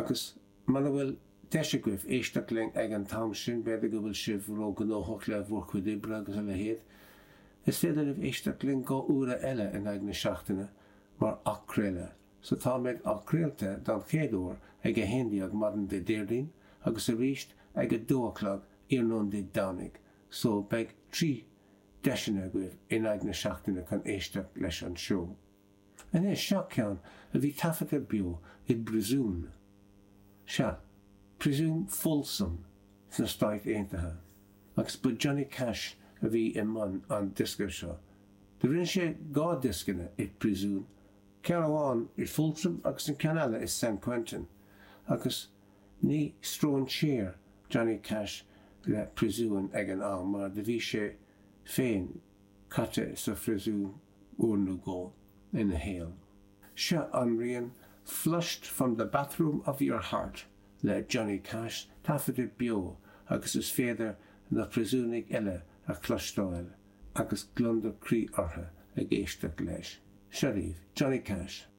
Agus muna bhfuil deis agaibh éisteacht linn ag an t-am sin, b'fhéidir go bhfuil sibh ró-ghnóthach le bhur gcuid oibre agus a leithéid, is féidir libh éisteacht linn dhá uaire eile in aghaidh na seachtaine mar athchraoladh. So táimid athchraolta don chéad uair ag 11:00 maidin Dé Déardaoin agus arís ag 2 a chlog iarnóin Dé Domhnaigh, so beidh trí deiseanna agaibh in aghaidh na seachtaine chun éisteacht leis an seó. Anois, seo ceann a bhí taifeadta beo i bpriosún, sea, priosún Folsom sna Stáit Aontaithe, agus ba Johnny Cash a bhí i mbun an diosca seo. Do rinne sé dhá dhioscanna i bpriosún, ceann amháin i Folsom agus an ceann eile i San Quentin, agus ní stróinséar Johnny Cash le priosúin ag an am, mar do bhí sé féin caite sa phriosún. uair nó dhó ina shaol. Seo an rian 'Flushed from the Bathroom of Your Heart' le Johnny Cash taifeadta beo agus is féidir na priosúnaigh eile a chloisteáil agus gliondar croí orthu ag éisteacht leis. Seo daoibh, Johnny Cash!